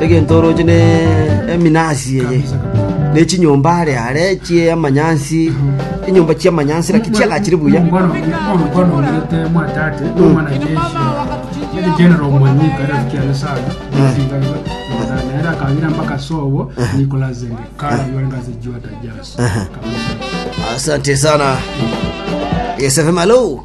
egento oroche ne eminasi eye, ne chinyomba are are chi'amanyansi, enyomba chi'amanyansi lakini chiagachire buya. Asante sana. Yes, FM, hello.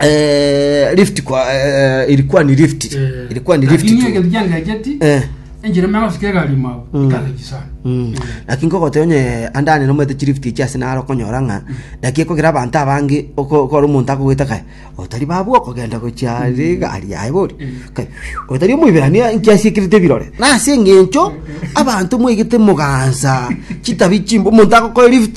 eh, lift kwa eh, ilikuwa ni lift Eh, ilikuwa ni lift lakini tu. egento kiangecheti Eh. enchera megosika egari mao ikagechi sana Mm. Eh. lakini kogote onye andane nomete chilift echi ase naro okonyora ng'a naki ekogera abanto abange oko- okora omonto akogwete kae otari babu okogenda gochia rigari yaye bori Kae, phew, otari omoiberania nkiasiekirete ebirore nase eng'encho abanto mwaigete mogansa chitabi chimbo omonto agokoe lift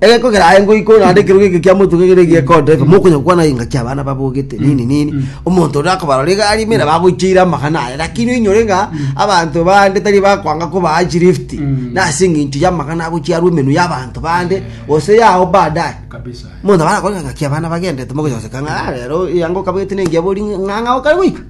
Egekogera aye ngoikwa naende ekerogo eke kia motuko ekero egiekoteba, Mm. mokonya gokwana engaki abana babogete Mm. nini nini, Mm. omonto onde akobarora egari ime nabo agoicheire amagana aye, lakini oinyore ng'a Mm. abanto bande tari bakwanga kobaa chilift, Mm. na ase eng'encho y'amagana agochiarwa emenwa y'abanto bande, Eh. gose yao baadaye. Kabisa. Omonto nabo arakore ng'a engaki abana bagendete, mogocha goseka ng'a "Ah, rero eango okabwate nengiya bori ng'a ng'a okare goika.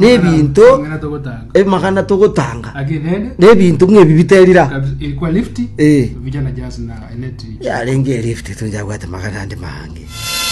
n'ebinto ebimagana togotanga n'ebinto ng'a ebi biterira yarenge elift tonjabwate magana ande mange